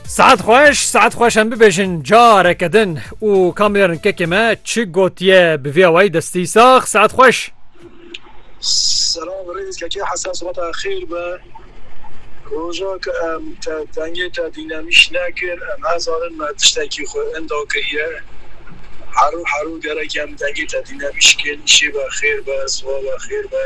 Saet xweş saet xweş em bibêjin careke din û kamêrin kekê me çi gotiye bi vê awayî destî sax saet xweş Selam rêz kekê hesen sibata xêr be Roja ke em te dengê te dînemîş nekir em her zanin me tiştekî xwe enda kiriye Herû herû gerek em dengê te dînemîş kên îşê be xêr be siwa be xêr be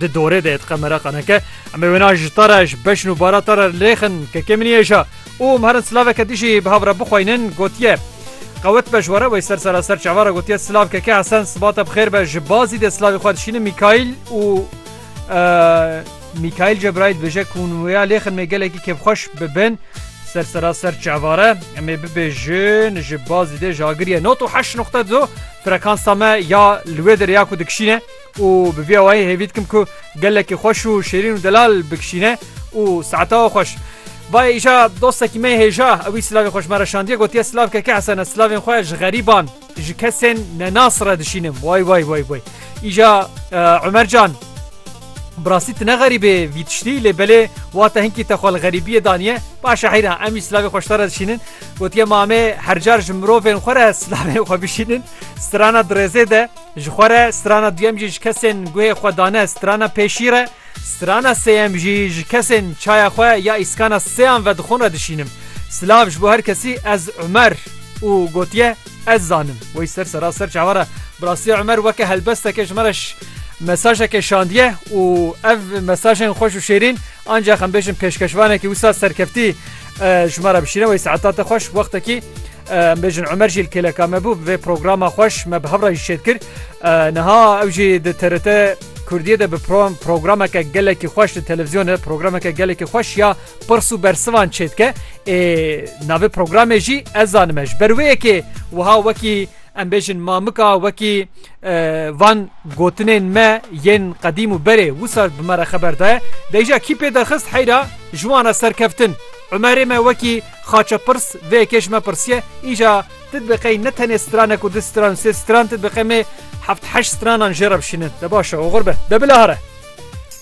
Di dorê de etqe mera qaneke em ê wêna ji ta re ji beşn û bara ta re lêxin ke kêm niyêja û em herin silaveke dijî bi hav re bixweynin gotiye. Qewet be ji were wey ser seraser çava re gotiye silav keke Hesen sibate bi xêr be ji bazî de silavê xwe dişînin Mîkaîl û Mîkaîl Cebraîl dibêje ku hûn wêya lêxin mê gelekî kêfxweş bibin ser seraser çava re em ê bibêjin ji bazî dê ji agiriye not û heşt nuqte du frekansa me ya li wê de rêya ku dikişîne û bi vî awayî hêvî dikim ku gelekî xweş û şêrîn û delal bikişîne û saeta xweş Bayê îşa dostekî me hêja ewî silavê xweş me re şandiye gotiye silav keke Hesene silavên xwe ji xerîban ji kesên nenas re dişînim way way way way îşa Umer can Bi rastî tu ne xerîbê vî tiştî lê belê wate hinkî te xwe li xerîbiyê daniye başe heyra em jî silavê xweş te re dişînin gotiye mamê hercar ji mirovên xwe re silavên xwe bişînin strana dirêzê de Ji xwe re strana duyem jî ji kesên guhê xwe dane strana pê şîr e, strana sêyem jî ji kesên çaya xwe ya îskana sêyan vedixwin re dişînim. Silav ji bo her kesî ez Umer û gotiye ez zanim. Wey ser seraser çavara bi rastî Umer weke helbesteke ji me re mesajeke şandiye û ev mesajên xweş û şêrîn ancax em bêjin pêşkeşvanekî wisa serkeftî ji me re bişîne. Wey saeta te xweş wextekî Em bêjin Umer jî li kêleka me bû bi vê programa xweş me bi hev re jî şêd kir. Niha ew jî di TRT Kurdiyê de bi programeke gelekî xweş di televîzyonê programeke gelekî xweş ya pirs û bersivan çêdike. Ê navê programê jî ez zanime ji ber wê yekê wiha wekî em bêjin mamika wekî van gotinên me yên qedîm û berê wisa bi me re xeber daye. Deyja kî pê derxist heyra ji wan re serkeftin. Umerê me wekî Xaçepirs vê yekê ji me pirsiye, Îja ti dibiqey ne tenê stranek û du stran û sê stran ti dibiqê me heft heşt stranan jê re bişînin. De baş e, oxir be. De bilahare.